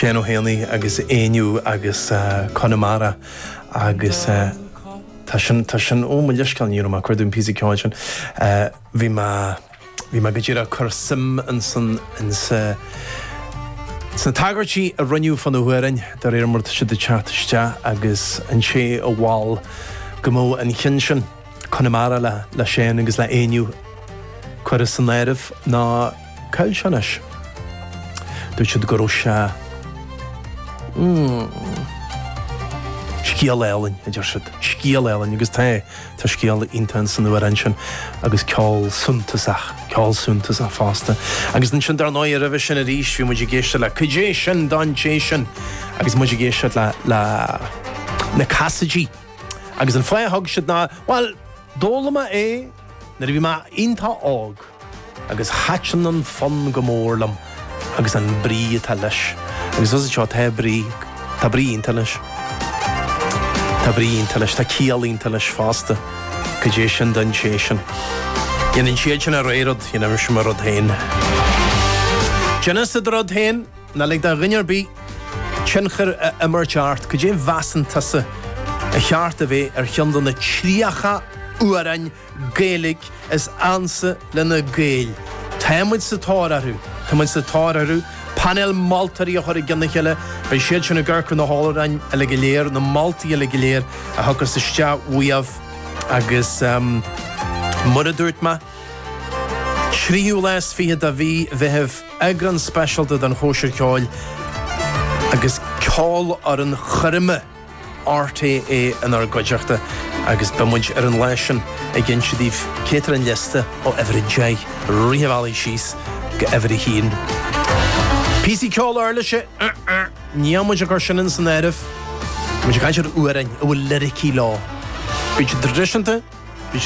Seán Ó hÉanaí agus Éinniú agus Conamara agus tá sin, tá sin, ó mo leithscéal ní raibh mé ag cur don phíosa ceoil sin. Bhí mé, bhí mé go díreach ag cur suim ansan insa, sna tagairtí a rinneadh fá na hamhráin de réir mar atá siad ag teacht isteach agus an té a mhol go mbeadh an cionn sin, Conamara le Seán agus le hÉinniú curtha san áireamh ná, caillteanais. Dúirt siad go raibh sé scéal álainn, a deir siad, scéal álainn agus tá é, tá scéal iontach in san amhrán sin agus ceol suntasach, ceol suntasach fosta. Agus ansin dar ndóigh roimhe sin arís bhí muid ag éisteacht le Caidé sin don té sin agus muid ag éisteacht le le na Casaidigh agus an fáth a thug siad ná bhuel d'fhoghlaim mé é Nuair a bhí mé iontá óg agus thaitin an fonn go mór liom agus an brí atá leis agus as seo tá brí, tá brí iontá leis, tá brí iontá leis, tá ciall iontá leis fosta caidé sin don té sin. Déanann siadsan a rogha rud, déanaimse mo rud féin. Déanann siad a rud féin. Ná lig do dhuine ar bith tionchar a imirt ort. Cad é a mheasann tusa ar cheart a bheith ar cheann de na 30 amhráin Gaeilge is ansa le na Gaeil? Tá muid sa tóir orthu! Tá muid sa tóir orthu! Painéal moltóirí a chur i gceann a chéile. Beidh siad sin ag amharc ar na hamhráin uilig go léir, na moltaí uilig go léir a thiocfas isteach uaibh agus mar a dúirt mé, Tríú lá is fiche de mhí Mheithimh, eagrán speisialta den Chóisir Cheoil agus ceolfhoireann choirme RTÉ inár gcuideachta agus beidh muid ar an lá sin ag inse daoibh cad é atá ar an liosta ó uimhir a deich a rith an bhealaigh síos go uimhir a haon. Píosaí ceoil uirlise? Níl muid ag cur sin in san áireamh. Tá muid ag caint ar amhráin a bhfuil liricí leo. Bíonn siad traidisiúnta,